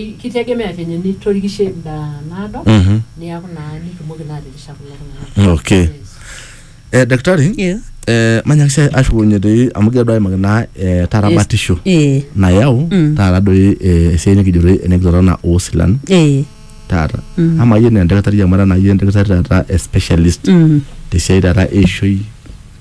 Kitegemea venye nitorikishe enda naado Mhm. niaku naa nitumoki naa atirisha kulo tung'anak. Okay. Yes. Eh, daktari Yes. eh, manyaki sii ashukunye doi amu kigira duo aimaki naa eh, tarabatisho Eh. nayau Mm. taata doi eh, esiai nikijo doi enekitorona oosilan Eh. taata Mm. ama iyie naa endakitari amu era naa iyie endakitari taata eh, specialist Mm. tesiai taata eishoi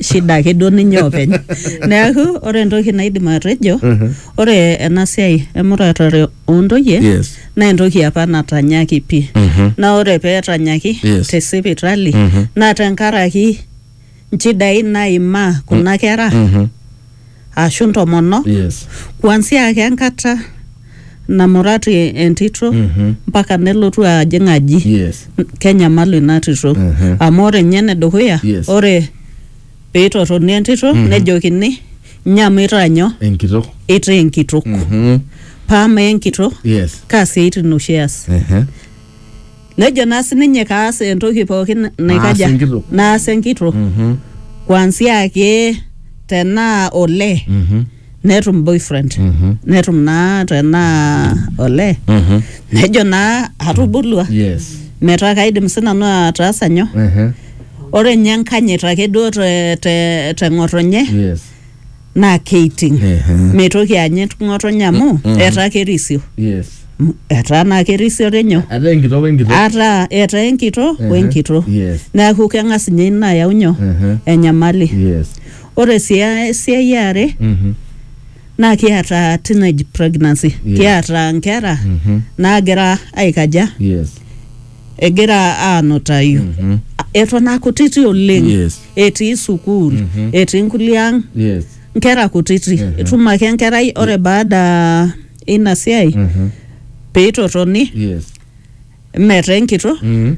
shida ake duo ninye openy neeku ore entoki naidim atejo ore ena siai emuratare ontoyie Yes. naa entoki apa natanyaki pii naa ore peetanyaki Yes. te sipitali naa tenkaraki nchidai naimaa kuna kera ashu ntomonok Yes. kuanzia ake enkata namurati entito Mhm. mpaka nelotu ajing aji yes N- kenyamalu ina tito Mhm. amu ore nye enedukuya Yes. ore peitotoni entito nejokini nyamu itaa nyoo enkitok itaa enkitok Mhm. paa mee enkitok yes kaa siaitin oshi eas Ehe. Nejo naa sininye kaas entoki pookin Naas naikaja enkitok. naas enkitok Mhm. kuanzia ake tenaa olee Mhm. netum boyfriend Mhm. netum naa tenaa olee Mhm. nejo naa atubulua Yes. metaa kaidim sinanu ataasa nyoo Mhm. ore nye enkanyit ake duo te, te, te ng'otonye Yes. naa keiting Ehe. meitoki anyit ng'otonye amu etaa kerisio yes M- etaa naa kerisio tinyo ataa enkitok wenkitok ataa etaa enkito Ehe. wenkito yes neeku keng'as ninye ina ayau nyoo Ehe. enyamali yes ore sii a- esiai eare Mhm. naa kiata teenage pregnancy Yeah. kiata nkera Mhm. naagira aikaja yes egira aanutayu Mhm. eton aa kutiti oleng Yes. etii sukuul etii nkulie ang Yes. nkera kutiti itum ake enkerai ore baada ina siai Mhm. peitotoni Yes. metaa enkitok Mhm.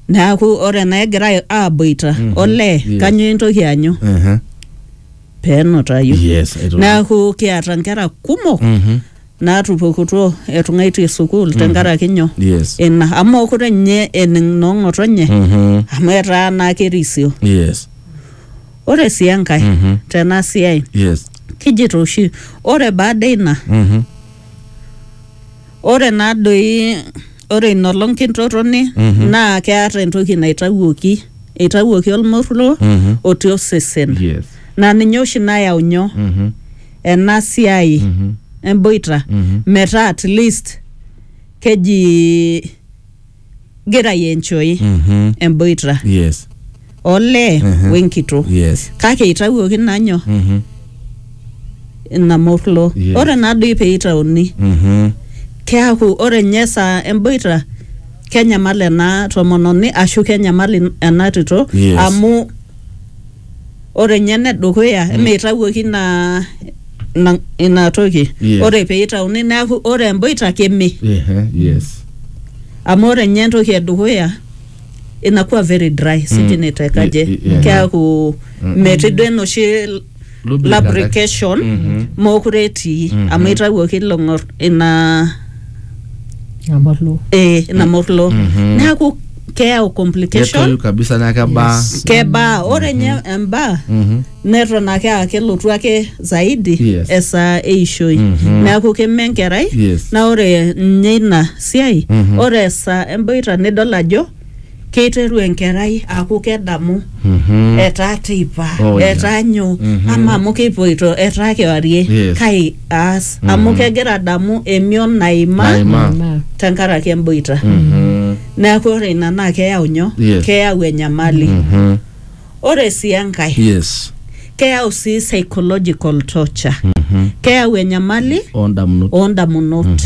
neaku ore naa egira aaboita Mhm. olee Yes. kanyoo intoki anyu Aha. peenutayu Yes. aitoki. neaku kiata nkera kumok Mhm. naatupukutuo etung'aitie sukuul tenkaraki nyoo yes ina amu mookure ninye ening noong'otonye Mhm. amu etaa naa kerisio yes ore sii enkae Mhm. tena siai yes kijito oshi ore baada ina Mhm. ore naa doi ore ina olong kintotoni Mhm. naa keata entoki naitawuoki eitawuoki olmoruo Mhm. otii osesen yes naa ninye oshi nayau nyoo Mhm. ena siai Mhm. emboita Mhm. metaa at least keji gira enjoy Mhm. emboita yes olee Mhm. wenkitok yes kake itawuoki nanyo Mhm. ina morlo Yes. ore nadoi peitauni Mhm. keaku ore nye saa emboita kenyamal ena tomononi ashu kenyamal in- ena tito Yes. amu ore nye nedukuya mm. meitawuoki ina ina, ina toki yes. ore peitauni neaku ore emboita keme yeah, yes. amu ore nye entoki edukuya inakuwa very dry sijui mm. nitekaje yeah, yeah. keaku mm. metii duo enoshi lubrication mookure etii amu itawuoki ilo ng'or ina Amorlo. eh, ina morlo neeku keyau complication ketoyu kabisa naa kebaa kebaa ore nye embaa Mhm. neton ake aa kelotu ake zaidi Yes. esaa eishoi Mhm. neeku keme enkerai Yes. na ore nye ina siai Mhm. ore esaa emboita nidol ajo keiteru enkerai aaku kedamu Mhm. etaa teipa Oh, yeah. etaa nyoo Mhm. ama amu kipoito etaa kewarie Yes. kai aas amu Mhm. kegira adamu emion naima Naima. Naima. tenkaraki emboita Mhm. neeku ore ina naa keyau nyoo Yes. keyau enyamali Mhm. Ore sii enkae, yes keyau sii psychological torture. Keyau enyamali oondamunot oo ndamunot.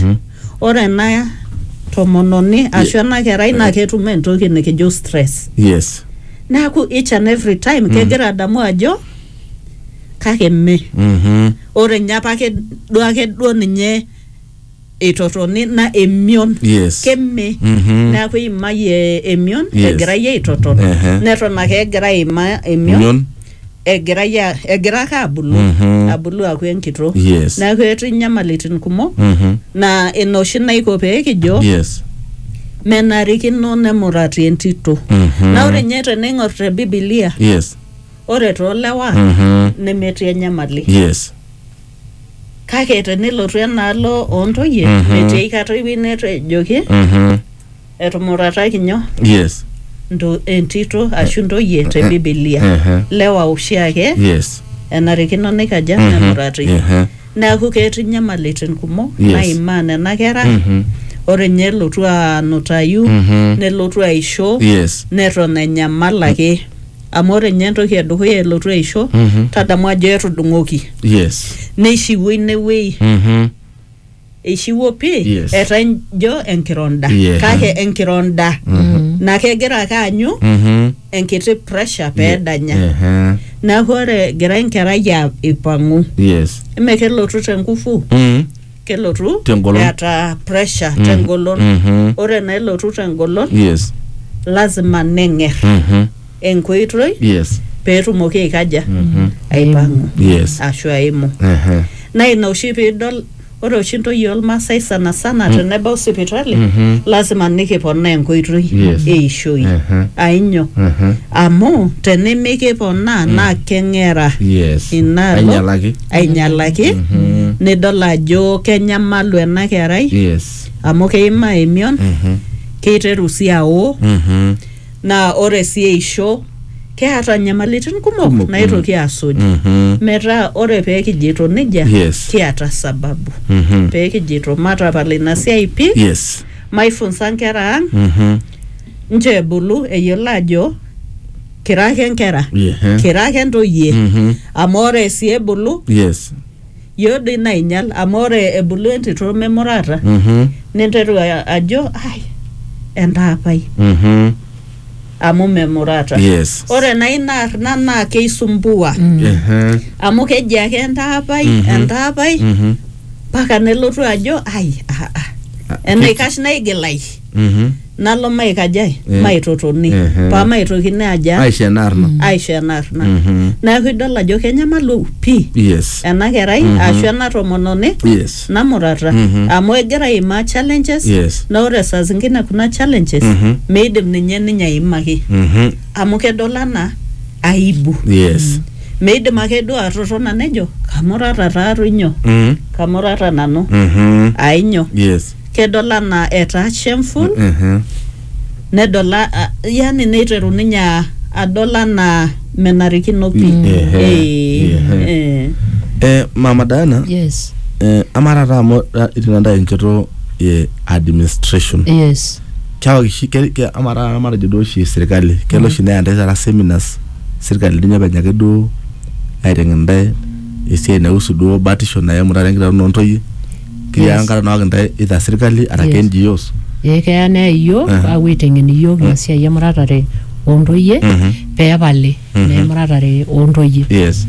Ore ena tomononi ashu ena kerai naa ketum entoki nikijo stress. yes Neeku each and every time kegira adamu ajo kake mme. Mhm. Ore ninye apake duake duo ninye eitotoni na emion Yes. keme Mhm. neaku eimayie emion Yes. egirai aitoton Ehe. neton ake egira aima emion Mion. egirai a- egira ake abulu Mhm. abulu aku enkito Yes. neaku etii nyamalitin kumok Mhm. na ina oshi naiko pee kijo Yes. menarikino nemurati entito Mhm. na ore nye teneing'or te bibilia Yes. ore toolewa Mhm. nemetii enyamali Yes. kake tenelotu enaalo oontoyie Mhm. metii aikata ewueji netejoki Mhm. etumurataki nyoo yes nto- entito ashu ntoyie te Eh, bibilia eh, lewa oshiake yes enarikino nikaja Mhm. nemurati Eh, neeku ketii nyamalitin kumok Yes. naimaa nena kera mhm. ore nye elotu anutayu Mhm. nelotu aisho yes neton enyamal ake amu ore ninye entoki edukuya elotu aisho Mhm. tadamu ajo etudung'oki yes neishiwuo inewueji Mhm. eishiwuo pii Yes. etaa ijo enkironda Yeah. kake enkironda naa kegira ake aanyu Mhm. enkiti pressure peedanya Ehe. neeku ore egira enkerai a- aipang'u yes ime kelotu te nguvu Mhm. kelotu Tengolon. eeta pressure Mm, tengolon mhm. ore naa elotu tengolon yes lazima neng'er Mhm. enkoitoi yes peetumoki aikaja Mhm. aipang'u yes ashu aimu Ehe. naa ina oshi piidol ore oshi ntoyie olmaasai sana sana tenebau sipitali Mhm. lazima nikiponaa enkoitoi Yes. eishoi Ehe. ainyo Ehe. amu tenimikiponaa naa keng'era yes inaalo ainyalaki ainyalaki nidol ajo kenyamalu ena kerai yes amu keimaa emion Mhm. keiteru sii awo Mhm. naa ore sii eisho keata nyamalitin kumok Kumok, naitoki asuj Mhm. metaa ore pee kijito nejia Yes. kiata sababu Mhm. pee kijito matapal ina siai pii yes maifunsa nkera ang Mhm. nche ebulu eyiolo ajo kira ake nkera Ehe. kira ake ntoyie Mhm. amu ore sii ebulu yes yioo doi nainyial amu ore ebulu entito memurata Mhm. ninteru a- ajo ai entaapai Mhm. amu memurata yes ore naa ina arna naa keisumbua Ehe. amu keji ake entaapai Mhm. entaapai Mhm. mpaka nelotu ajo ai ah, ah. enaikash naigilai Mhm. nalo maikajae Eh. maitotoni Ehe. paa maitokini aja aisho enaarna aisho enaarna Mhm. neeku idol ajo kenyamalu pii yes ena kerai ashu ena tomononi yes namurata Mhm. amu egira aimaa challenges Yes. na ore saa zingine kuna challenges Mhm. meidim ninye ninye aimaki Mhm. amu kedol anaa aibu yes meidim ake duo atotona nejo kamurata taatoi nyoo Mhm. kamurata nanu Mhm. ainyo yes kedol anaa etaa shameful nedol a- a- yani neiteru ninye a- adol anaa menarikino pi Mm, ehe, Eh, ehe. eh. Eh, mama Diana, yes eh, ama taata amu ra- itii nanda enchoto e administration yes keaku oshi ke- ke- ama taata matejo duo oshi sirkali kelo oshi neya ntae taata seminars sirkali ninye openy ake duo aiteng'en ntae esiai naihusu duo batisho naimu taata enkitauno ontoyie keya Yes. enkata naok intae either sirkali araki Yes. NGOs ee keya neya iyiook Aha. aapuo aiteng'en iyiook ina siai emuratare oontoyie Mhm. pee epali Mhm. naa emuratare oontoyie yes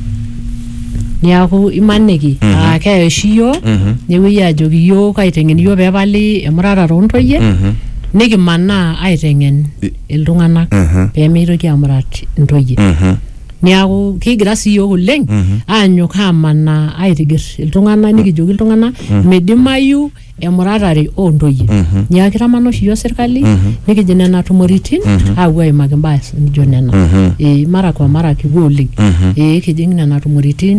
niaku imaniki Mhm. aa keya oshi iyiook Mhm. nepuoi aajoki iyiook aiteng'en iyiook pee epali emuratare oontoyie Mhm. nikimanaa aiteng'en I- iltung'anak Mhm. pee meitoki amurat intoyie Mhm. Niaku kigira sii iyiook oleng aanyok aamanaa aitiger iltung'anak nikijoki iltung'anak midimayu emuratare oo ntoyie. Niaku kitamana oshi iyiook sirkali nikijing nena tumoritin aapuo aimaki imbaa nijo nena. Ee mara kwa mara kipuo oleng. Ee kijing nena tumoritin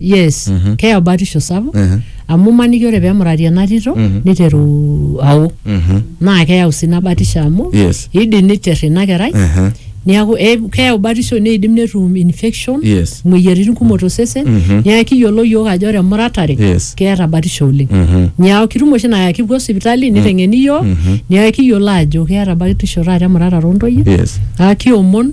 yes Mhm. keyau batisho sapuk Ehe. amu imaniki ore pemurati ena tito Mhm. niteru ao Mhm. naa keyau sii ina batisho amu Yes. idim niter ina kerai Ehe. niaku eh, keyau batisho neidim netum infection Yes. moyiaritin kumok tosesen Mhm. niaku kiyiolo yiok ajo ore emuratare Yes. keeta batisho oleng Mhm. niaku kitum oshi naa kipuo sipitali niteng'eni yiok Mhm. niaku kiyiolo ajo keeta batisho taata emuratare ontoyie Yes. aa kiomon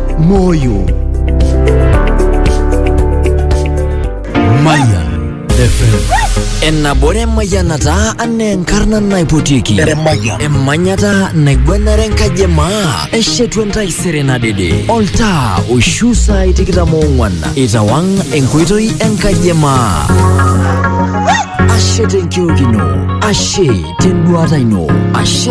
moyo Maya FM. Enabore mayanata ane enkarna naipotiki. Emanyata naigwenare enkaji emaa. Eshetu entaisere nadede. Oltaa oishu saai tikitam oong'wan. Itawang' enkoitoi enkaji emaa. Ashe tenkiok ino. Ashe tenduata ino. Ashe